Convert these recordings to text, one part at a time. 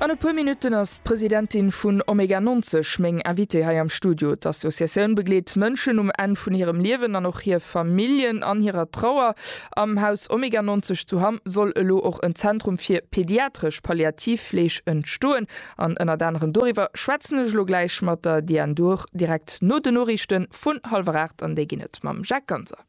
An e puer Minutten ass d'Presidentin vun Omega 90 meng Invitée hei am Studio. D'Associatioun begleet Mënschen um Enn vun hirem Liewen an och hir Familljen an hirer Trauer. Am Haus Omega 90 zu Hamm soll elo och en Zentrum fir pediatresch Palliativfleeg entstoen. An ënnert anerem doriwwer schwätzen ech elo gläich mat der Diane Duhr direkt no den Noriichte vun hallwer 8 an déi ginn et mam Jacques Ganser.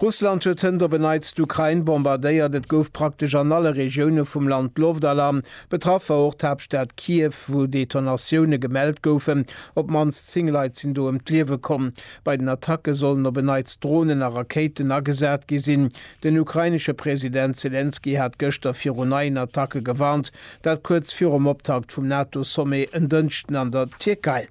Russland huet hënt op en Neits d'Ukrain bombardéiert. Et gouf praktesch an alle Regioune vum Land Loftalarm. Betraff war och d'Haaptstad Kiew, wou Detonatioune gemellt goufen. Op d'mannst 10 Leit sinn do ëm d'Liewe komm. Bei den Attacke sollen op en Neits Dronen a Rakéiten agesat gi sinn. Den ukrainesche President Selenskyj hat gëschter viru neien Attacke gewarnt. Dat kuerz virum Optakt vum NATO-Sommet en Dënschden an der Tierkei.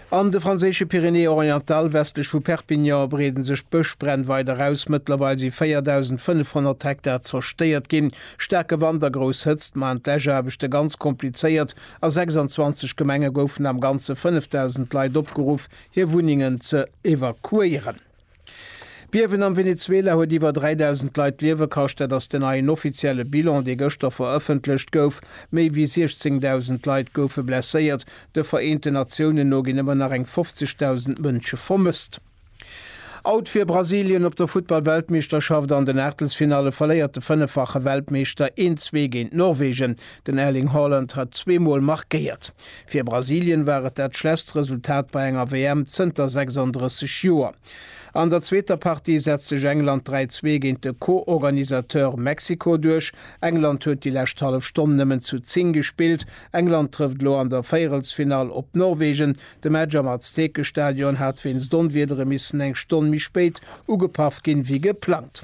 An de franséische Pyrénées-Orientales, westlech vu Perpignan, breeden sech d'Bëschbränn weider aus. Mëttlerweil si 4.500 Hektar zerstéiert ginn. Staarke Wand a grouss Hëtzt maachen d'Läschaarbechte ganz komplizéiert. A 26 Gemenge goufen am Ganze 5.000 Leit opgeruff, hir Wunnengen ze evakuéieren. D'Biewen am Venezuela huet iwwer 3.000 Leit d'Liewe kascht. Dat ass den neien offizielle Bilan, dee gëschter verëffentlecht gouf. Méi wéi 16.000 Leit goufe blesséiert. De Vereenten Natiounen no ginn ëmmer nach eng 50.000 Mënsche vermësst. Out fir Brasilien op der Futtball-Weltmeeschterschaft, An den Aachtelsfinalle verléiert de fënneffache Weltmeeschter 1, 2 géint Norwegen. Den Erling Haaland hat zwee Mol markéiert. Fir Brasilien war et dat schlechst Resultat bei enger WM zënter 36 Joer. An der zweeter Partie setzt sech England 3, 2 géint de Co-Organisateur Mexiko duerch. England huet déi lescht hallef Stonn nëmmen zu 10 gespillt. England trëfft elo an der Véierelsfinall op Norwegen. De Match am Aztekestadion hat wéinst Onwiedere missen eng Stonn méi spéit ugepaff ginn, wéi geplangt.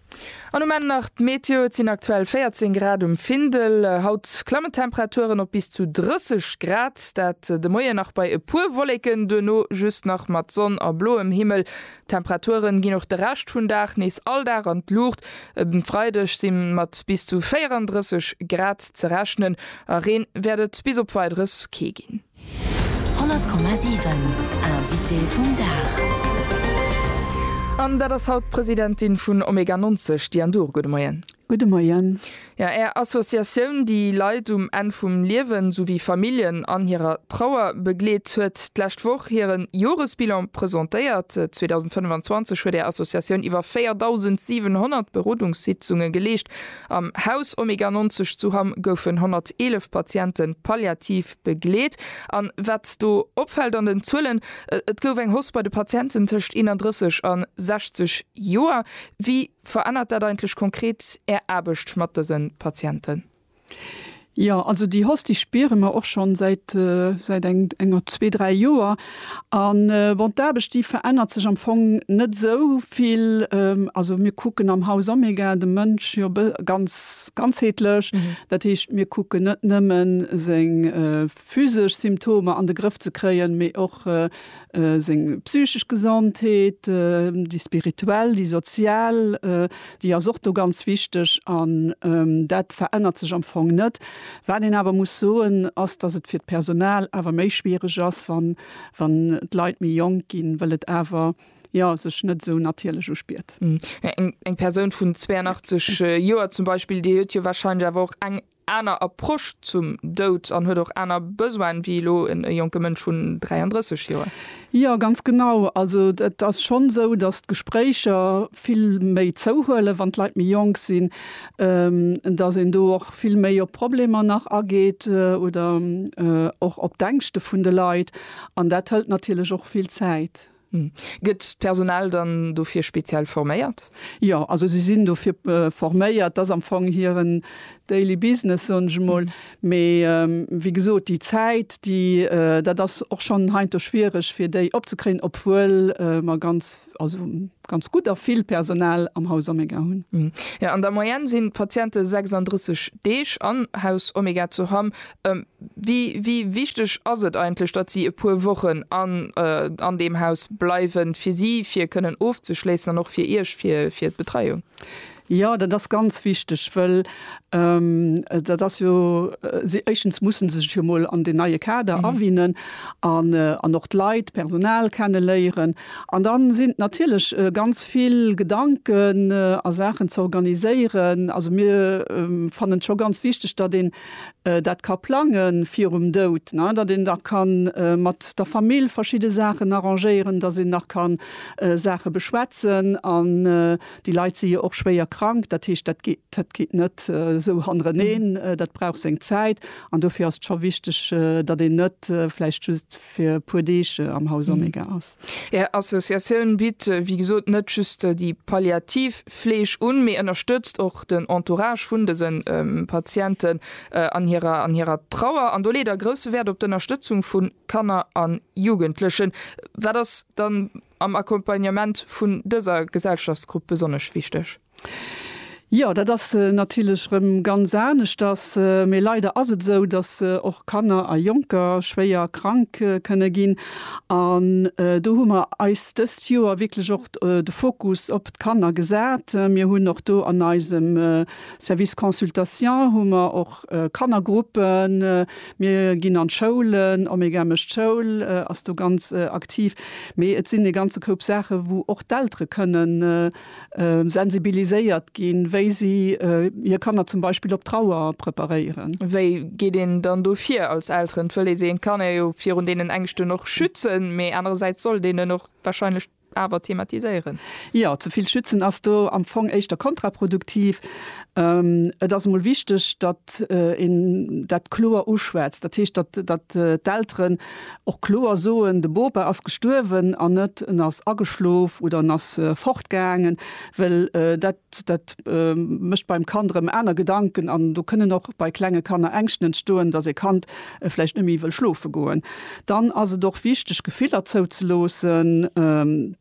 An um Enn nach d'Meteo, Et sinn aktuell 14 Grad um Findel. Haut klammen d'Temperaturen op bis zu 30 Grad, dat de Moien nach bei e puer Wolleken, duerno just nach mat Sonn a bloem Himmel. D'Temperaturen ginn och de Rescht vun Dag nees all Dag an d'Luucht. Um Freideg si mat bis zu 34 Grad ze rechnen a Reen wäert et bis op Weideres kee ginn. 100,7 Invité vum Dag. An dat ass haut d'Presidentin vun Omega 90, Diane Duhr. Gudde Moien. Gudde Moien. Jo, Är Associatioun, déi Leit um Enn vum Liewen souwéi Familljen an hirer Trauer begleet, huet d'lescht Woch hire Joresbilan presentéiert. 2025 huet Är Associatioun iwwer 4.700 Berodungssitzunge geleescht. Am Haus Omega 90 zu Hamm goufen 111 Patiente palliativ Begleet. An wat do opfällt an den Zuelen, et gouf eng Hausse bei de Patienten tëscht 31 a 60 Joer. Wéi verännert dat eigentlech konkret Är Aarbecht mat dëse Patienten? Jo, also déi Hausse, déi spiere mer och schonn säit enger zwee, dräi Joer. A bon, d'Aarbecht déi verännert sech am Fong net esou vill. Also mir kucken am Haus Omega de Mënsch jo ganz ganzheetlech. Dat heescht, mir kucken net nëmme seng physesch Symptomer an de Grëff ze kréien, mee och seng psychesch Gesondheet, déi spirituell, déi sozial, Déi ass och do ganz wichteg an dat verännert sech am Fong net. Wat een awer muss soen, ass, dass et fir d'Personal awer méi schwiereg ass, wann d'Leit méi jonk ginn, well et awer, jo, sech net esou natierlech uspiert. Eng Persoun vun 82 Joer zum Beispill, déi huet jo warscheinlech awer och eng aner Approche zum Doud an huet och aner Besoine wéi elo e jonke Mënsch vun 33 Joer. Jo, ganz genau. Also et ass schonn esou, datt d'Gespréicher vill méi zouhuelen, wann d'Leit méi jonk sinn, datt een do och vill méi op d'Problemer nach ageet oder och op d'Ängschte vun de Leit. An dat hëlt natierlech och vill Zäit. Gëtt d'Personal dann dofir speziell forméiert? Jo, also si sinn dofir forméiert. Dat ass am Fong hiren Daily Business, soen ech emol. Mee wéi gesot, déi Zäit, déi, dat ass och schonn heiansdo schwiereg, fir déi opzekréien, obwuel mer ganz, also ganz gutt a vill Personal am Haus Omega hunn. Jo, an der Moyenne sinn d'Patiente 36 Deeg am Haus Omega zu Hamm Wéi wichteg ass et eigentlech, datt si e puer Wochen an deem Haus bleiwen, fir si fir kënnen ofzeschléissen an och fir Iech fir d'Betreiung? Jo, dat ass ganz wichteg, well dat ass jo, éischtens musse se sech jo emol an deen neie Kader awinnen an och d'Leit, d'Personal kenneléieren. An da sinn natierlech ganz vill Gedanken a Saachen ze organiséieren. Also mir fannen et scho ganz wichteg, datt een dat ka plange virum Doud, ne, datt een da ka mat der Famill verschidde Saachen arrangéieren, datt een nach ka Saache beschwätzen. An déi Leit si jo och schwéier krank, dat heescht, dat geet, dat geet net esou hannereneen, dat brauch seng Zäit. An dofir ass et scho wichteg, datt een net vläicht just fir e puer Deeg am Haus Omega ass. Är Associatioun bitt, wéi gesot, net just déi palliativ Fleeg un, mee ënnerstëtzt och den Entourage vun dëse Patienten an hirer Trauer. An do leet Der grousse Wäert op d'Ënnerstëtzung vu Kanner a Jugendlechen. Wat ass dann am Accompagnement vun dëser Gesellschaftsgrupp besonnesch wichteg? Jo, dat ass natierlech erëm ganz aneschters. Mee leider ass et esou, datt och Kanner a Jonker schwéier krank kënne ginn. An do hu mer eis dëst Joer wierklech och de Fokus op d'Kanner gesat. Mir hunn och do an eisem Service Consultation hu mer och Kannergruppen, Mir ginn an d'Schoulen, Omega mécht d'Schoul, ass do ganz aktiv. Mee et sinn e ganze Koup Saache wou och d'Eltere kënnen sensibiliséiert ginn, wéi si hir Kanner zum Beispill op d'Trauer preparéieren. Wéi geet een dann do vir als Elteren? Et wëll ee sengem Kanner jo virun deenen Ängschten och schützen, mee anerersäits sollt een en och warscheinlech Awer thematiséieren. Jo, ze vill schützen ass do am Fong éischter kontraproduktiv. Et ass emol wichteg, datt een dat kloer uschwätzt. Dat heescht, datt d'Elteren och kloer soen, de Bopa ass gestuerwen an net en ass ageschlof oder en ass fortgaangen, well dat Dat mécht beim Kand erëm aner Gedanken an do kënnen och bei klenge Kanner Ängschten entstoen, datt e Kand vläicht net méi wëll schlofe goen. Dann ass et och wichteg, Gefiller zouzeloossen,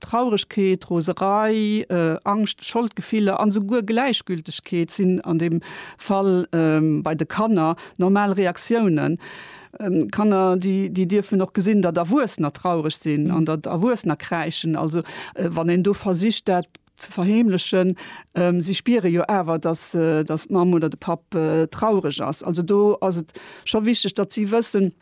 Trauregkeet, Roserei, Angscht, Scholdgefiller an esouguer Gläichgültegkeet sinn an deem Fall bei de Kanner normal Reaktiounen. Kanner, déi dierfen och gesinn, datt Erwuessener traureg sinn an datt Erwuessener kräischen. Also wann een do versicht dat. ze verheemlechen. Si spiere jo awer, datt d'Mamm oder de Papp traureg ass. Also do ass et scho wichteg, datt si wëssen,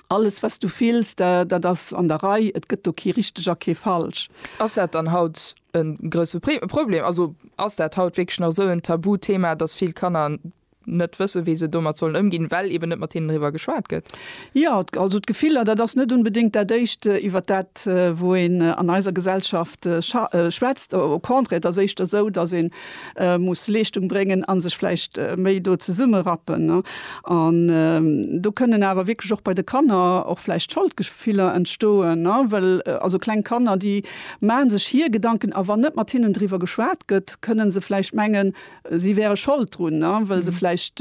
alles wat s du fills, dat ass an der Rei, et gëtt do kee richteg a kee falsch. Ass dat dann haut e grousse Problem? Also ass dat haut wierklech nach esou en Tabuthema, datt vill Kanner net wëssen, wéi se domat sollen ëmginn, well eben net mat hinnen driwwer geschwat gëtt? Jo, also d'Gefiller, dat ass net unbedéngt dat Éischt, iwwert dat wou een an eiser Gesellschaft schwätzt. Au contraire, et ass éischter esou, datt ee muss Leeschtung bréngen a sech vläicht méi do zesummerappen. An do kënnen awer wierklech och bei de Kanner och vläicht Scholdgefiller entstoen, well also kleng Kanner, déi maache sech hir Gedanken a wann net mat hinnen driwwer geschwat gëtt, kënne se vläicht mengen, si wäre Schold drun, well se vläicht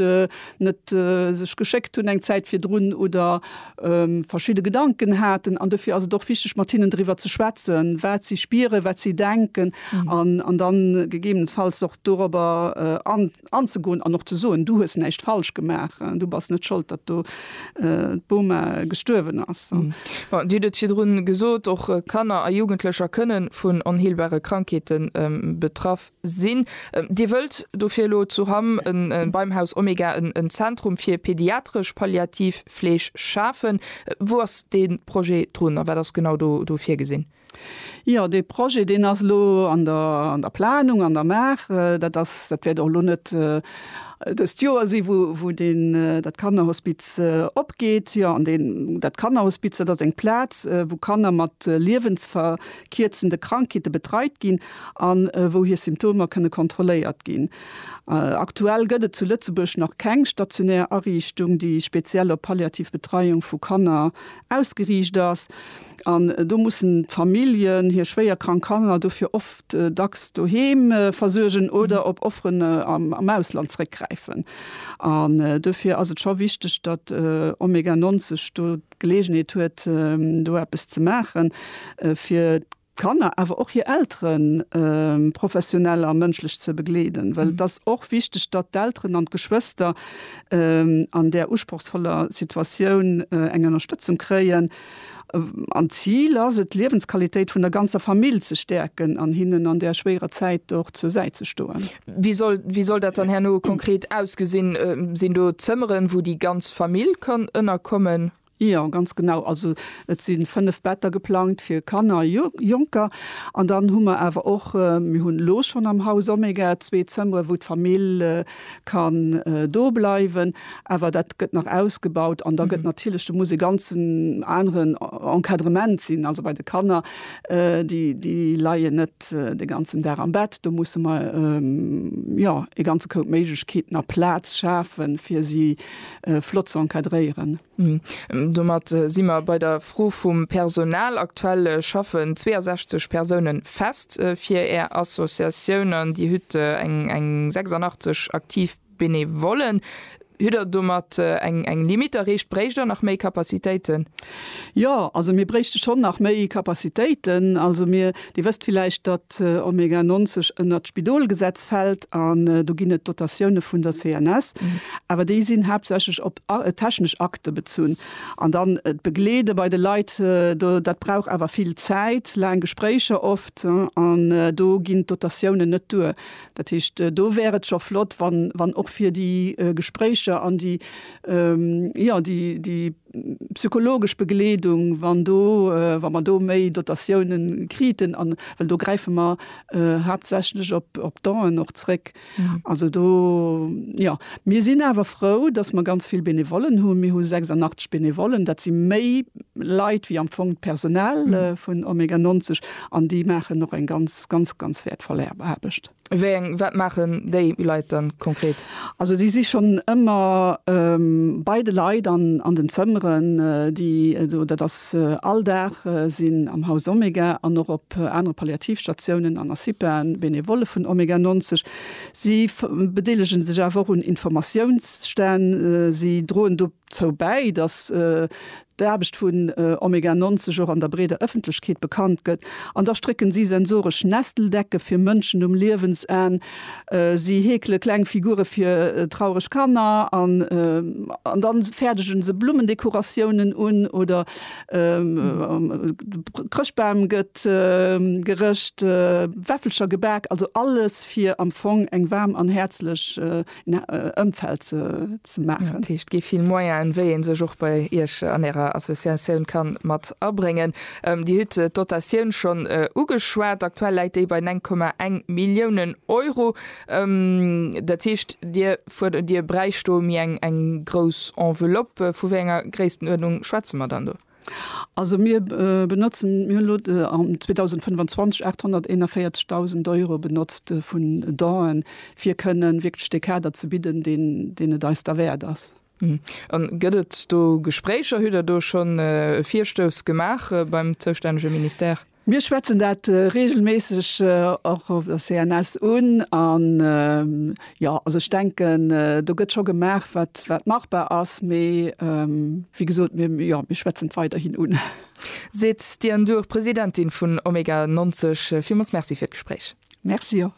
net sech geschéckt hunn eng Zäit virdrun oder verschidde Gedanken haten. An dofir ass et och wichteg, mat hinnen driwwer ze schwätzen, wat si spieren, wat si denken an dann gegebenenfalls och dorobber anzegoen an och ze soen, Du hues näischt falsch gemaach, du bass net Schold, datt do d'Boma gestuerwen ass. Dir hutt et virdrun gesot, och Kanner a Jugendlecher kënne vun onheelbare Krankheete betraff Sinn. Dir wëllt dofir elo zu Hamm beim Haus Omega en Zentrum fir pediatresch palliativ Fleeg schafen. Wou ass dee Projet drun a wat ass genau do virgesinn? Jo, dee Projet, deen ass elo an der Planung, an der Maach. Dat ass, dat wäert och elo net dëst Joer sinn, wou deen, dat Kannerhospiz opgeet. Jo, an deen, dat Kannerhospiz, dat ass eng Plaz, wou Kanner mat Liewensver, kierzende Krankheete betreit ginn a wou hir Symptomer kënne kontrolléiert ginn. Aktuell gëtt et zu Lëtzebuerg nach keng stationär Ariichtung, déi speziell op palliativ Betreiung vu Kanner ausgeriicht ass. An do mussen d'Familljen hir schwéier krank Kanner dofir oft dacks doheem versuergen oder op Offeren am Ausland zréckgräifen. An dofir ass et scho wichteg, datt Omega 90 do. d'Geleegenheet huet, do eppes ze maachen, fir d'Kanner, awer och hir Elteren professionell a mënschlech ze begleeden. Well et ass och wichteg, datt d'Elteren an d'Geschwëster an där usprochsvoller Situatioun eng Ënnerstëtzung kréien. An d'Zil ass et, d'Liewensqualitéit vun der ganzer Famill ze stäerken an hinnen an där schwéierer Zäit och zur Säit ze stoen. Wéi soll, wéi soll dat dann herno konkret ausgesinn? Sinn do Zëmmeren, wou déi ganz Famill kann ënnerkommen? Jo, ganz genau. Also et si fënnef Better geplangt fir Kanner a Jonker. An dann hu mer awer och, mir hunn elo schonn am Haus Omega zwee Zëmmere wou d'Famill kann do bleiwen, awer dat gëtt nach ausgebaut. An da gëtt natierlech, do muss e ganzen aneren Encadrement sinn, also bei de Kanner, Déi leien net de ganzen Dag am Bett. Do musse mer jo e ganze Koup Méiglechkeeten a Plaz schafen, fir si flott ze encadréieren. Domat si mer bei der Fro vum Personal. Aktuell schaffen 62 Persoune fest fir Är Associatioun an Dir hutt eng 86 aktiv Benevollen, Hutt Der domat eng eng Limite erreecht? Bréicht Der nach méi Kapazitéiten? Jo, also mir bréichte schonn nach méi Kapazitéiten. Also mir, Dir wësst villäicht, datt Omega 90 ënnert d'Spidolgesetz fält an do ginn et Dotatioune vun der CNS, awer déi sinn haaptsächlech op technesch Akte bezunn. An dann d'Begleede bei de Leit, do dat brauch awer vill Zäit, laang Gespréicher oft, an do ginn d'Dotatiounen net duer. Dat heescht, do wär et scho flott, wann och fir déi Gespréicher an déi, jo, déi psychologesch Begleedung, wann do, wa mer do méi Dotatiounen kriten, an, well do gräife mer haaptsächlech op d'Done och zréck. Also do, jo. Mir sinn awer frou, dass mer ganz vill Benevollen hunn. Mir hu 86 Benevollen. Dat si méi Leit wéi am Fong d'Personal vun Omega 90. An déi maachen och eng ganz, ganz, ganz wäertvoll Aarbecht. Wéi eng, wat maachen déi Leit dann konkret? Also déi si schonn ëmmer bei de Leit an den Zëmmeren, déi do, dat ass all Dag, sinn am Haus Omega an och op anere Palliativstatiounen an a CIPAen, Benevolle vun Omega 90. Si bedeelege sech awer och un Informatiounsstänn, si droen dozou bäi, dass d'Aarbecht vun Omega 90 och an der breeder Ëffentlechkeet bekannt gëtt, an da strécken si sensoresch Nesteldecke fir Mënschen um Liewensenn, si heekele kleng Figure fir traureg Kanner an da fäerdege se Blummendekoratiounen un oder de Chrëschtbam gëtt gerëscht, Wäffelcher gebak, also alles fir am Fong eng waarm an häerzlech Ëmfeld ze maachen. Dat heescht, gi vill Moyenen, wéi ee sech och bei Iech an Ärer Associatioun ka mat abréngen. Dir hutt d'Dotatioun schonn ugeschwat. Aktuell läit déi bei 9,1 Milliounen Euro. Dat heescht, Dir fuerdert, Dir bräicht do méi eng grouss Enveloppe. Vu wéi enger Gréisstenuerdnung schwätze mer dann do? Also mir benotzen, mir hunn elo 2025 841.000 Euro benotzt vun Donen, fir kënnen wierklech dee Kader ze bidden, deen et eis da wäert ass. A gëtt et do Gespréicher? Hutt Der do schonn e Virstouss gemaach beim zoustännege Ministère? Mir schwätzen dat reegelméisseg och op der CNS un. An, jo, also ech denken, do gëtt scho gemaach, wat, wat machbar ass. Mee, wéi gesot, mir, jo, mir schwätzen et weiderhin un. Seet d'Diane Duhr, Presidentin vun Omega 90. Villmools Merci fir d'Gespréich. Merci och.